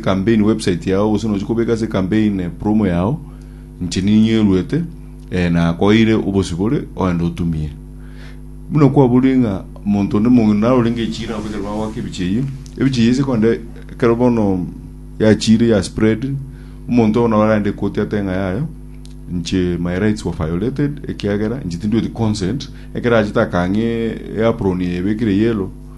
Campaign website yao gose nochi kobeka ase campaign promo yao inche ninyweruete eh nakoeire obosibore ogende otumie buna kwaborire ng'a omonto onde mong'ina naro orenge echiire nabo ekero bagoaka ebichi eyio ebichi eyio ase konde ekero bono yachiire ya spread omonto bono arende ekoti ate ng'a yayo inche my rights were violated ekiagera inche tindweti consent ekero achete akang'e apron eye ebekire yellow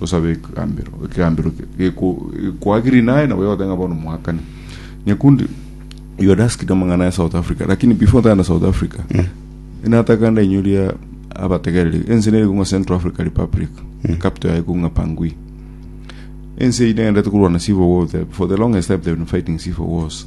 gosabe ekegambero, ekegambero ke- geko- gekoagirie naye nabo yagotenga ng'a bono moakane. Nyakundi, you had asked amang'ana ya South Africa, lakini before ntagenda South Africa, inataka ndainyoria abategereri, ense nere kong'a Central Africa Republic, capital yaye kong'a Bangui. Ense eye negenderete korwana civil war there. For the longest time they've been fighting civil wars.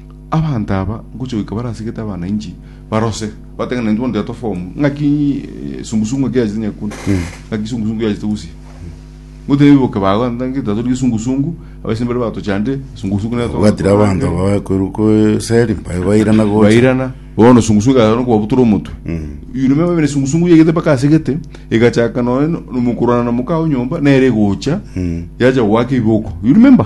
Abanto aba ngochia goika barasigete abana inchi barose, bateba ng'a intwe bono tiato form ng'aki esungusungu eke yachete nyakuna, ng'aki esungusungu yachete gusia. Ngotebia boke bago ng'aki tiatori gesungusungu, abaise mbare batochande, esungusungu nere togora Gatira togora abanto ere. bakorwa eseri bairana gocha bairana bono sungusungu ekagera no kobabutura omotwe you remember bene sungusungu yaigete mpaka ase gete egachaka nonya no- nomokurana na moka ao nyomba nere egocha yacha goaka ebiboko you remember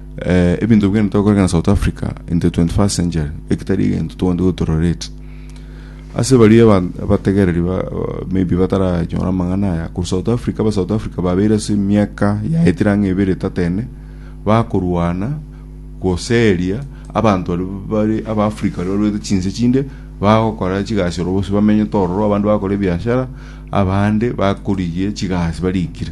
Eh, ebinto bikende tokoreka na South Africa in the 21st century, ekitari egento togende gotororete. Ase baria aban- abategereri ba, ba- maybe bataranyora amang'ana aya, ku South Africa, aba South Africa babeire ase emiaka yaetire ang'e ebere etatene, bakorwana goseria abanto baria bare aba Africa baria barwete chinse chinde bagokora chigasi oro bose bamenyete ororo, abande bagakora ebiashara, abande bakorigia chigasi barikire.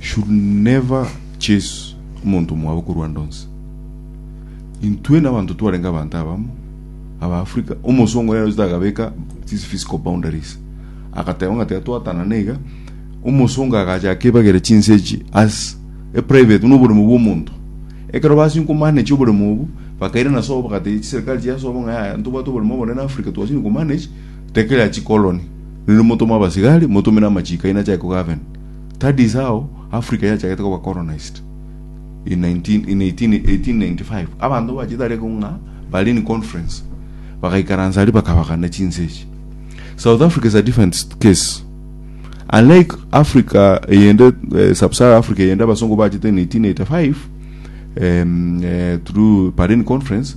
should never chase omonto omwabo korwa ande onsi. Intwe n'abanto twarenge abanto abamo aba Africa, omosongo yari ochete akabeka these physical boundaries agateba ng'a tiga twatanana iga, omosongo agacha akebagera chinse echi as a private buna oboremo bwa omonto. Ekero basinywe komanage oboremo obo, bakairana sobo bagatiga chiserikali chiasobo ng'a yaya ntobwate oboremo obonene Africa twasinywe komanage, Tekela chikoloni, rende motome abasigari, motome namachiiko aino achake kogaven. That is how Africa yachagete koba colonized in 19, in 18, 1895. Abanto bachete aria ko ng'a Berlin Conference, bagaikaransa aria bakabagana chinse echi. South Africa is a different s- case. Unlike Africa eyende, eh, Sub-Sahara Africa eyende abasongo bachete in 1885, em, eh, through Berlin Conference,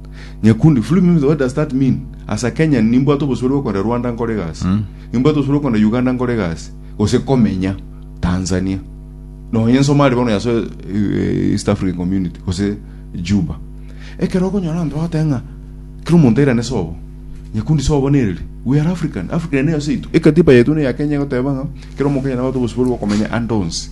Nyakundi, free me with what does that mean? As a Kenyan nimbwate obosore bwa kogenda Rwanda nkore egasi. Nimbwate obosore bwa kogenda Uganda nkore egasi. Gose komenya Tanzania. Nonye nsomari bono yaso eh, East African Community gose Juba. Ekero okonyora abanto bagoteba ng'a kera omonto airane sobo. Nyakundi sobo nereri. We are African. Africa ere neyo seito. Ekatiba yaito ne ya Kenya egoteba ng'a kera omokenya nabate obosibore bwa komenya ande onsi.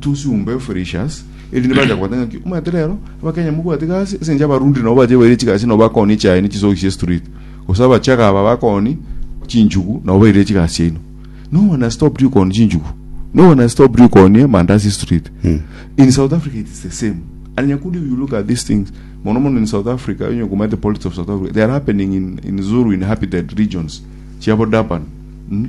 Tosumbe Felicius, erinde bacha kobwata ng'aki omanyete rero abakenya mobwate gasi ase enchera abarundi nabo bacha baire chigasi nabo bakoni echae ne chisogi chia street gose abachaga aba bakoni chinchugu nabo baire chigasi chiaino no one has stopped you koni chinchugu no one has stopped you koni amandasi street in South Africa it is the same and nyakundi you look at these things mono mono in South Africa onye komanyete politics of South Africa they are happening in, in Zulu in Happy Dead regions chiabo Durban mm?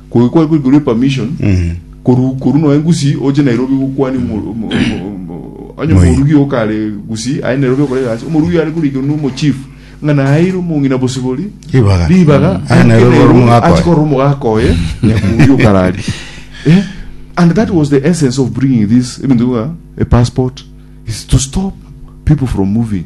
Kogi kware koigurwa epermission koru koru noe ngusi oche Nairobi gokwania omo- omo- omo- omo- onye Moi. omorugi okare gusi aye Nairobi okore gasi omorugi are korikerwa na omochief ng'a naeire omong'ina bosibori Ribaga. ribaga Mm. Aye aike Nairobi ore Nairobi omogaka oye. achikore omogaka oye nyakuria okarari Eh, and that was the essence of bringing this ebinto bwa a passport is to stop people from moving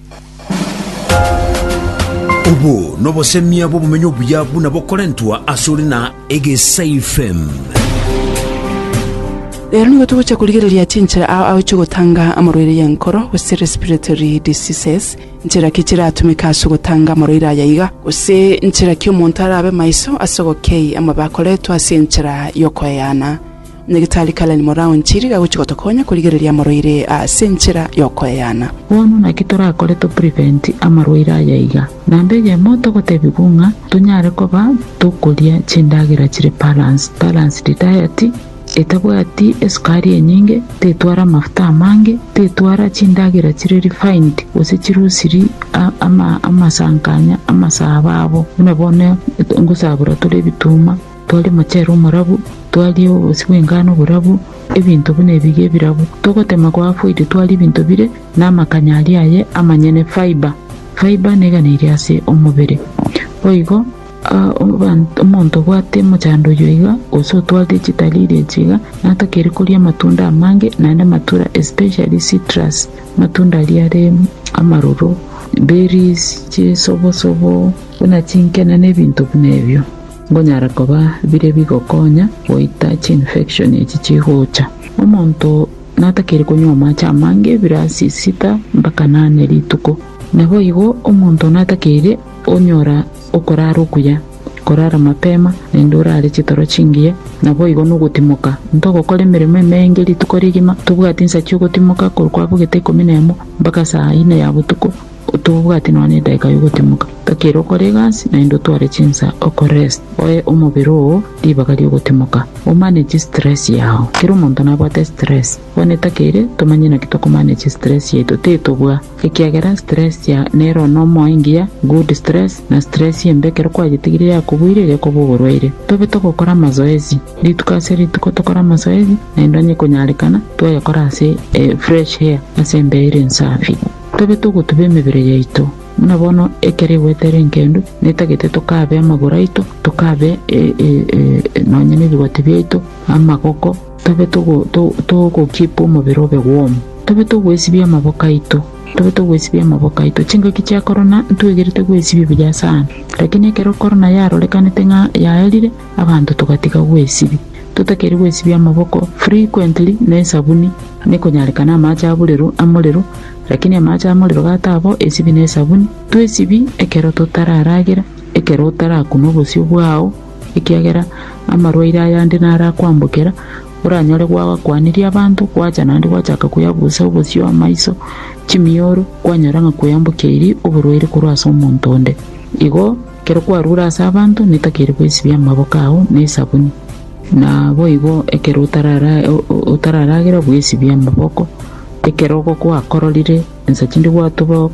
Obo nobosemia bw'obomenyo obuya buna bokorentwa asore na egesaifm. Rero nigo togochia korigereria chinchera ao agochia gotanga amorwaire y'enkoro, gose respiratory diseases, nchera ki chiratumeke ase ogotanga amorwaire aya iga, gose nchera ki omonto arabe maiso ase ogokei amabako aretwe ase enchera y'okoeana. Nyagetari Karen Morao Nchiri gagochia gotokonya korigereria amoroire ase enchera y'okoeana. Bono naki torakore to prevent amarwaire aya iga, namba eyemo togotebigwa ng'a tonyare koba tokoria chindagera chire balanced, balanced diet, etabwati esukari enyinge, tetwara amafuta amange, tetwara chindagera chire refined gose chirusiri amasankanya amasabo abo buna bono ngosabora tore ebituma. Twaria omochere omorabu, twaria obobisi bw'engano oborabu, ebinto buna ebiria ebirabu. Togotema kwa afoiti twaria ebinto bire namakanya aria aye amanyene, fibre. Fibre neganeirie ase omobere. Boigo, omonto obwate omochando oyio iga, gose otwarire chitari iria echi iga, natakeire koria amatunda amange, naende amatura especially citrus, amatunda aria are amaroro, berries, chisobosobo, buna chinkena na ebinto buna ebio. Nkonyara koba bire bigokonya goita chiinfection echi chigocha. Omonto natakeire konywa amache amange bire ase sita mpaka nane rituko. Naboigo omonto natakeire onyora okorara okuya, korara mapema naende orare chitoro chingiya, naboigo nogotimoka. Ntogokora emeremo emenge rituko rigima, tobwati nsa chiogotimoka korwa kwabogete ikomi nemo mpaka saa ine ya botuko. Otobwate nonya edaika y'ogotimoka, gaki ere okore egasi, naende otware chinsa okorest, oe omobere oo ribaga ri'ogotimoka, omanage stress yao. Kera omonto nabwate stress. Bono take ere, tomanye naki tokomanage stress yaito, titobua. Ekiagera stress ya nero nomo engiya, good stress, na stress embe ekero kwayetigire yakobuire egekoba oborwaire. Tobe togokora amazoezi. Rituko ase rituko tokore amazoezi, naende onye konyarekana, twayakora ase fresh air, ase embeera ensafi. Tobe togotuba emebere yaito, buna bono ekero egwete ere enkendu, na etagete tokabe amagoro aito, tokabe nonya nebigoti biaito, amagoko, tobe togokeep omobere obe warm. Tobe togwesibia amaboko aito, tobe togwesibia amaboko aito. Chingaki chia korona ntwegerete gwesibia buya sana, lakini ekero korona yarorekanete ng'a yaerire, abanto togatiga gwesibia. Totakeire gwesibia amaboko frequently na esabuni. Nekonyarekana amaache aburero amorero, lakini amaache amorero gatabo esibi ne esabuni, twesibi ekero totararagera, ekero otarakuna obosio bwao, ekiagera amarwaire ayande narakwambokera, oranyore gwagakwanirie abanto, gwacha naende gwachaka kweabusa obosio, amaiso, chimioro, kwanyora ng'a kweambokeirie oborwaire korwa ase omonto onde. Igo, ekero kwarure ase abanto, netakeire gwesibia amaboko ao ne esabuni. Naboigo ekero otararagera bwesibie amaboko, ekero ogokwakororire ensa chinde gwatoba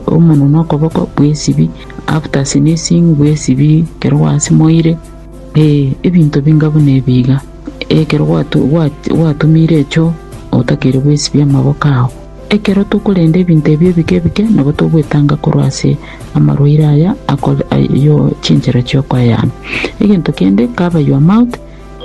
omonwe na okoboko, bwesibi, after sneezing bwesibi ekero gwasimoire, ee ebinto binga buna ebi iga, ekero gwatumire echoo otakeire bwesibie amaboko ao. Ekero tokorenda ebinto ebi ebike ebike, nabo togwetanga korwa ase amarwaire aya ayo chinchera chiokoeana. Egento kende, cover your mouth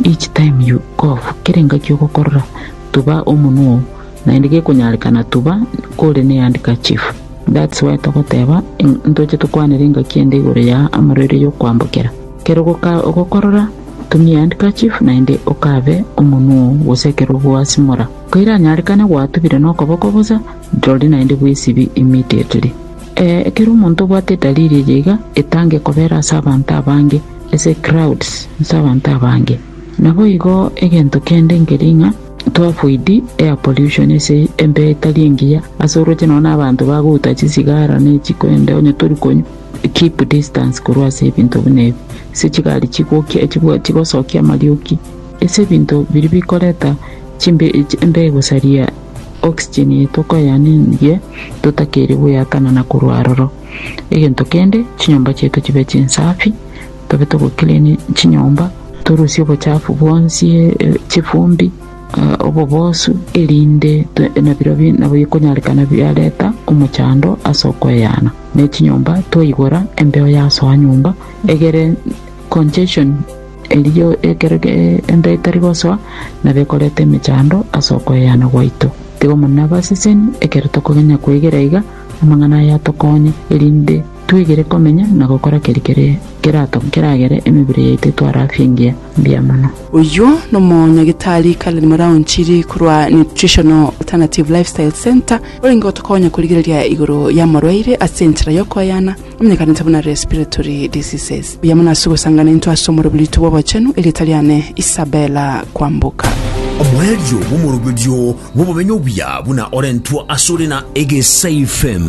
each time you cough, kera engaki ogokorora, tuba omonwa oo, naende gekonyarekana tuba kore ne handkerchief. That's why togoteba ntoche tokwanere engaki ende igoro ya amarwaire yokoambokera. Kera ogokorora, tumia handkerchief naende ocove omonwa oo gose ekero ogoasimora. Koiranyarekane gwatubire nokoboko bosa, rirorio naende bw'esibi immediately. Ee, ekero omonto obwate edaliri eye iga, etange kobera ase abanto abange, ase crowds, ase abanto abange. Naboigo egento kende nkeria ng'a toavoid air pollution ase embea etari engiya, ase oroche nonya na abanto bagouta chisigara ne chikwende onye tori konywa, keep distance korwa ase ebinto buna ebi, ase chigari chigokia, chigosokia amarioki. Ase ebinto biria bikoreta chimbe echi embe gosaria oxygen eye tokoyanenirie totakeire goyatana na korwa aroro. Egento kende, chinyomba chiaito chibe chinsafi, tobe togo clean chinyomba, torusie obochafu bwonsi, chifumbi, obobosu erinde nabirobio nabo bikonyarekana biareta omochando ase okoyana ne chinyomba twaigora embeo yasoa nyomba egere congestion. Erio ekero enda etari gosoa, nabekorete emechando ase okweyana gwaito. Tiga Omonene abaseseni ekero tokogenya kwegera iga amang'ana aya atokonye, erinde twegere komenya na gokora keria kere keragere emebere yaito etware afya engiya. Mbuya mono. Oyio nomonyagitari Karen Moraonchiri korwa Nutritional Alternative Lifestyle Centre orenge gotokonya korigereria igoro y'amorwaire ase enchera y'okoyana. Onye ekanisa buna respiratory diseases, mbuya mono ase ogosangana intwe ase omoroberio oito bw'obochenu, erieta riane Isabella Kwamboka. Omoerio bw'omoroberio bw'obomenyo obuya buna orentwa ase ore na egesaife.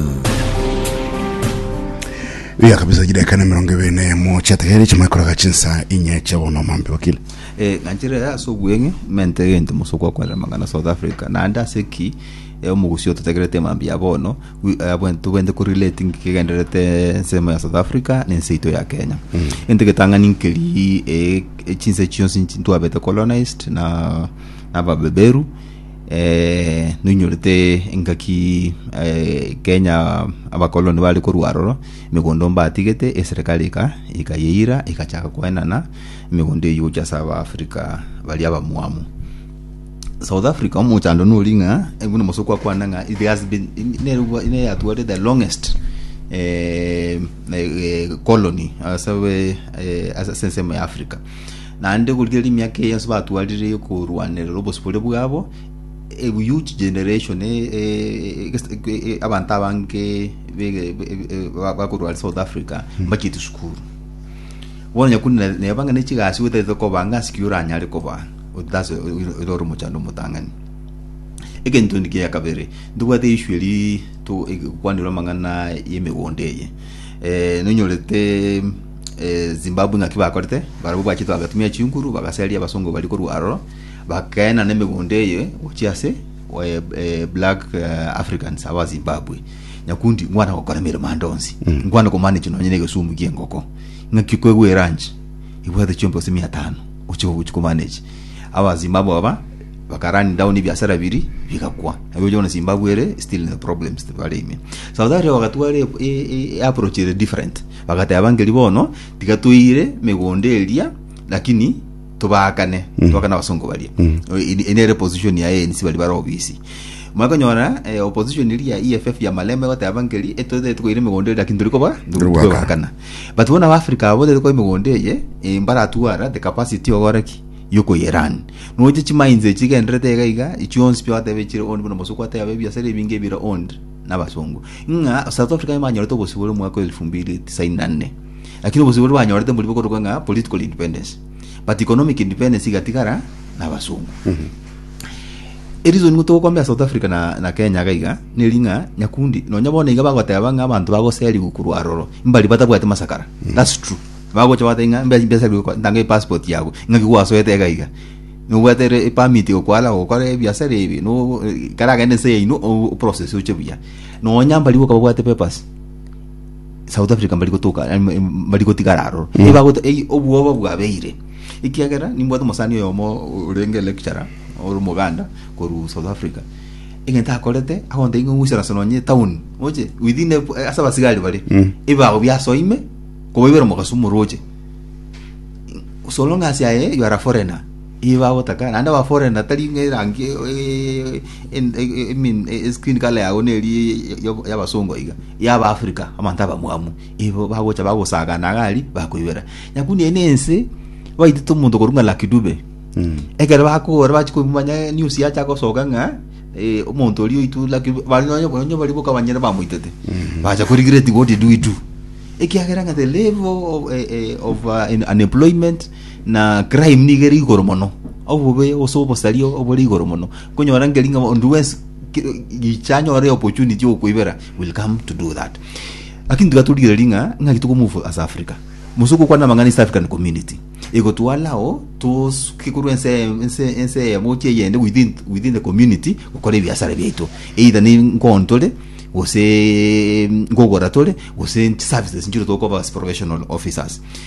Buya kabisa chidakika na emerongo ebere na emo chiategere chimanye koraga chinsa inye chia bono omambe wakili Eh, ng'anchire yaya ase obweng'e mente egento mosoko akorera amang'ana south africa naende ase ki eh, omogusi ototegerete mambia bono we are when to when to correlating kigenderete ensemo ya South Africa ne nse ito ya Kenya ente getang'ani nkeri eh, echinse chionsi nchi- twabete colonized na nababeberu eh, noinyorete engaki eh, Kenya abakoloni bari korwa aroro emegondo mbatigete eserikali ika ikayeira ikachaka koenana emegondo eyio gochia ase Abaafrika baria abamwamu South Africa omochando nori ng'a eh, buna mosoko akwana ng'a it has been nerwa ne yatware the longest eh, eh, colony asabe eh, asa ase ensemo ya Africa naende gorigereria emiaka eye yonsi batwarire korwanerera obosibore bwabo a huge generation eh, eh, eh, eh, abanto abange bege- be- be- ba- bakorwara South Africa mbacheti sukuru bono nyakuna nebanga ne chigasi otaete kobanga asiki oranyare kobaa otase oire ore omochando omotang'ani. Egento endi kia kabere, ntobwate issue eri to ekwanire amang'ana y'emegondo eye. Eh, nonyorete eh, Zimbabwe ng'aki bakorete, barabwo bachete bagatumia chinguru, bagaseria abasongo bari korwa aroro, bakaena n'emegondo eye gochia ase eh, eh, black eh, Africans aba Zimbabwe. Nyakundi ngwana gokora emeremo ande onsi. Ngwana komanage nonye na egesumu ki'engoko. Ng'aki kwegwa eranchi, ibwate chiompeo ase mia tano. gochia gochia komanage aba Zimbabwe aba baka run down ebiasara biri bigakwa nabo oche kona Zimbabwe ere still in the problems tibari ime South Africa bagatwara e- e- e- approach ere different bagateba ngeri bono tiga toire megondo eria lakini tobakane tobakane abasongo baria Eri- eri nere position ya ANC bari bare obisi mwakonyora eh, opposition eri ya EFF ya Malema egoteba ngeri etwete tikoire megondo eria lakini turi koba Turi gwakana. tugokana But bono Abafrika aba botaete koba emegondo eye, eh, mbaratwara the capacity yokora ki? Yokoyerun. Noche chimainzi echi chigenderete iga iga, chionsi pi agateba echire owned buna omosoko ateba ebiasara ebinge ebire owned nabasungu. Ng'a South Africa emanyorete obosibore omwaka wa elfu mbili tisaini na nne. Lakini obosibore banyorete mbori bokorokwa ng'a political independence. But economic independence igatigara nabasungu. Erizoni nigo togokombea South Africa na, na Kenya iga iga, neri ng'a nyakundi nonya bono iga bagoteba ng'a abanto bagoserigwe korwa aroro mbari batabwate masakara. That's true. Bagocha bagoteba ng'a mbe- mbeserigwe ko- ntange passport yago ng'aki gwasoete iga iga. Nobwate re- permit gokwana gokora ebiasara ebi no karagende nse yaino o- o process oche buya. Nonya mbari boka babwate papers. South Africa mbari gotoka em, em, mbari gotigara aroro Eh. Nibagote- ei, obwoba bwabeire ekiagera nimbwate omosani oyomo orenge lecturer ore omoganda korwa South Africa egento akorete agontebia ng'a ng'usera ase nonye town oche within a- eh, ase abasigari bare Mm. ebibago biasoime kobaibera omogasi omoroche so long as aye you are a foreigner Ibagotaka, naende baforerane natari ng'a erangi eskin color yabo neri y'abasongo iga, yaba Africa, abanto abamwamu igo bagocha bagosagana iga aria bakoibera. Nyakune ere ense baitete omonto okorwa ng'a Lucky Dube, ekero bakogora bachia komanya news yacha gosoka ng'a omonto oria oitwa Lucky Dube, baria nonya nonya baria boka banyare bamoitete, bacha ko regret what did we do? Ekiagera ng'a the level of unemployment. na crime niga ere igoro mono obobe ose obosario obore igoro mono konyora ngeri ng'a onde wensi ki- gicha anyore opportunity yokoibera will come to do that lakini tiga torigereria ng'a ng'aki tokomuvu as africa musuku okwana amang'ana east african community egotwalao tosuke korwa ense ense ense eyemo gochia eyende within within the community gokora ebiasara biaito either ne nkoo ntore gose nkogora tore gose chiservices nchire tokoba as professional officers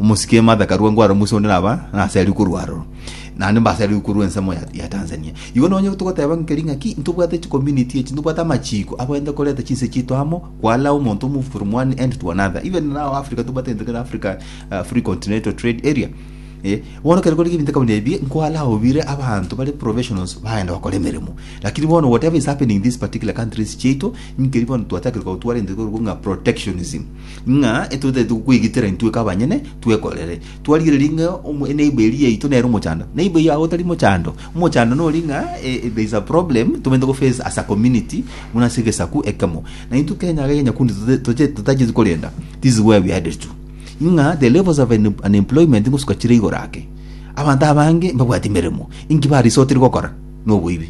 Omosike e Martha Karua ngware omoise onde naba naseri korwa aroro. Naende mbaseri korwa ensemo ya, ya Tanzania. Igo nonye togoteba nkeri ng'aki ntobwate chicommunity echi, ntobwate amachiko agoenta koreta chinse chiaito amo, koallow omonto o move from one end to another. Even now Africa tobwate egento kere Africa uh, Free Continental Trade Area. Eh, bono kere kore ebinto kabinde ebi nkoallow bire abanto bare professionals bagenda gokora emeremo. Lakini bono whatever is happening in these particular countries chiaito, nkeri bono twatagete kotwara egento kore ng'a protectionism. ng'a etotaete gokwegitera intwe kabanyene twekorere. Twarigereria ng'a omo- eneiba eria yaito nere omochando. Neiba yago otari mochando, omochando nori ng'a eh, eh, there is a problem tobaete goface as a community buna ase egesaku ekemo. Na intwe Kenya iga ya nyakundi tote- toche- totacheti korenda, this is where we headed to. Ng'a the levels of un- unemployment ngosuka chire igoro ake. Abanto abange mbabwati emeremo, inki ba resortire gokora? Noboibi.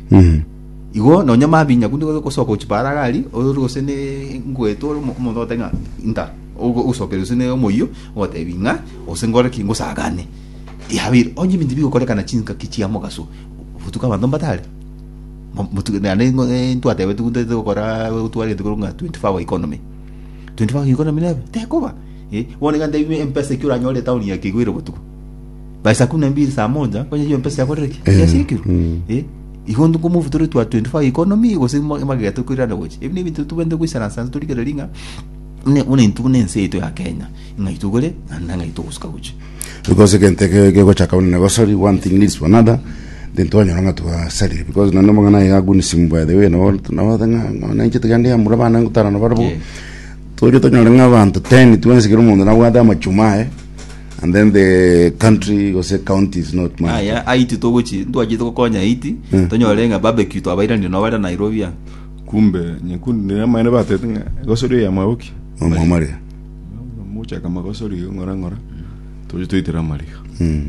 Igo nonya mabinyaku nigo ogosoka ochia Paragari, ore gose n'engweto ore omodote ng'a inta ogo- ogosokera gose n'omoyio, ogotebi ng'a gose nkore ki ngosagane. Yabeire onye ebinto bigokorekana chingaki chia mogaso, botuko abanto mbatare? Mo- motu- naende ng'o- e- ntwatebeti gu- ntagete gokora gotwarete korwa ng'a twenty four hour economy. Twenty four hour economy nebe? Tekoba, eh, bono iga ntebie mpesa ekio oranyore etaoni eke igo ere botuko. By saa kumi na mbili saa moja onye hiyo mpesa yakorire ki Eh, yasirikirwe mm. eh igo ntuko move tore twa 25 economy gose ma- magega tokoirana gochi ebi nebintu tubende goisana sana torikere ringa ne una intu ne nse eto ya Kenya ngai tugore na ngai tugusuka gochi because egento ge- gegochaka buna nebo sorry one thing leads to another then twanyora ng'a twasarire because nonye omong'ana aye aguni simu by the way nabo nabo ng'a ng'a nainche tiga ndi amura bana ngotara nabo barabo Yeah. torio tonyore ng'a abanto 10 twensigire omonto nabwate amachuma aye And then the country gose county is not managed. aya aiti togochi ntwachete gokonya aiti Mm. tonyore ng'a barbecue twabairanire nabo bare nairobi a kumbe nyekundu niyo amaene batete ng'a egosori eye yamwaboki Omwamare. mochaka magosori ng'ora ng'ora toche toitera amariga Mm.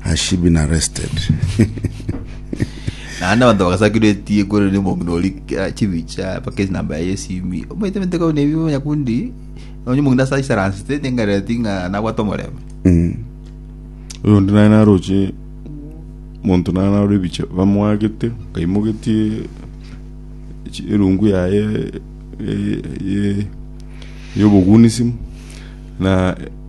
has she been arrested naende abanto bagasakirwa etie kore ne omong'ina ori ah, chibicha mpaka enamba yaye esimi omaite mente kau nebi nyakundi onye omong'ina ase aisaransete nengareti ng'a nabwate omorembe Mm. oyo onde naye naroche monto naye naro ebicha bamwagete kaimogetie chi- erungu yaye ye- ye- yobogunisimu na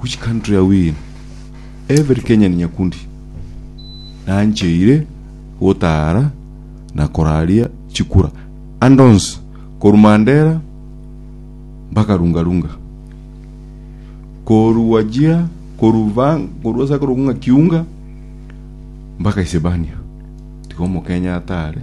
Which country are we in? Every Kenyan nyakundi nancheire gotara na koraria chikura ande onsi korwa Mandera mpaka Runga Runga. Korwa Wajir, korwa Vang, korwa ase akorokwa ng'a Kiunga mpaka Isebania. Tiga Omokenya atare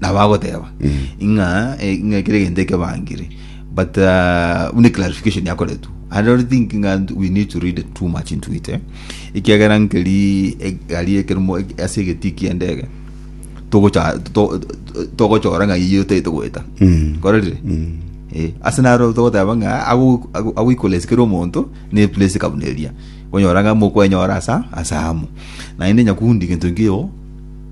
nabo agoteba ing'a eh, ing'a kire gento ekebangire but uh, buna clarification yakoretwe i don't think ing'a we need to read too much into it eh. ekiagera nkeri egari ekerimo ase egetii kiendege togocha- to- to- togochora ng'a iye otaete goeta korerire Eh, ase naro togoteba ng'a ago- ago- agoikolesikere omonto ne place kabuna eria onyora ng'a mokwenyora asa asa amo naende nyakundi gento nkio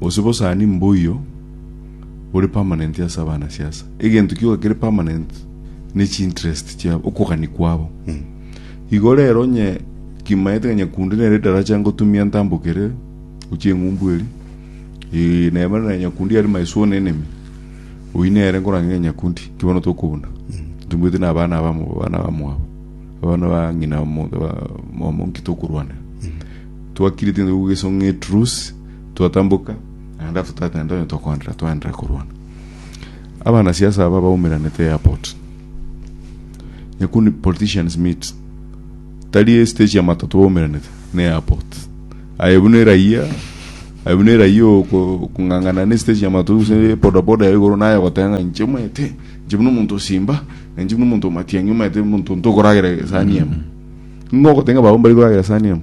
Gose bosani mboyio bore permanent ase abanasiasa. Egento kioka kere permanent ne chiinterest chiabo, okogani kwabo. Igo rero onye kimaete ng'a Nyakundi nere edaracha ngotumia ntambokere gochia eng'umbu eri, eh, na Emmanuel Nyakundi are my sworn enemy, oyio nere nkorange ng'a Nyakundi, ki bono tokobuna? Tombwete na abana aba amo- abana abamwabo, abana ba ng'ina omo- ba- omonto nki tokorwanera? Twakire tindi gogesong'e etruce, Twatamboka, naende after that naende onye tokoenderera twaenderere korwana. Abana siasa aba baumeranete airport. Nyakundi politicians meet. Tari stage ya matatu baumeranete ne airport. Aye buna eraia, aye buna eraia oko- okong'ang'ana ne stage ya matatu gose bodaboda ya igoro naye ogoteba ng'a inche omanyete, inche buna omonto osimba, na inche buna omonto omatiang'i omanyete omonto ntokoragera esani emo. Ng'o ogoteba ng'a abwo mbare koragera esani emo?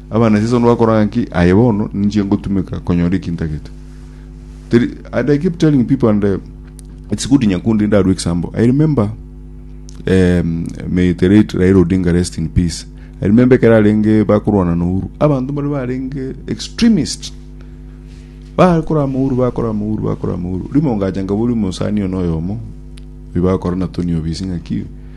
Abanancheso nibakora ngaki, aye bono ninche ngotumeka konyora eki ntagete. Teri, and I keep telling people and uh, it's good Nyakundi ndarue example. I remember um, may the late Raila Odinga rest in peace. I remember ekero arenge bakorwana na Uhuru. Abanto bari barenge extremist. Bakora amahuru, bakora amahuru, bakora amahuru. Rimo ngacha ngabori omosani ono oyomo. Oyo bakora na Tony Obisi ngaki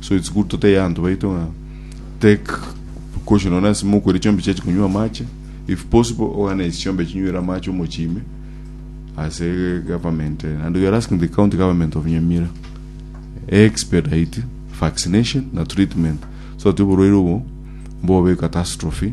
so it's good toteya abanto baito ng'a take precaution nonye ase mokweri chiombe chiachi konywa amache if possible ogane chiombe chinywere amache omochie ime ase government eh, and we are asking the county government of nyamira expedite vaccination na treatment so that oborwaire obo mbobe catastrophe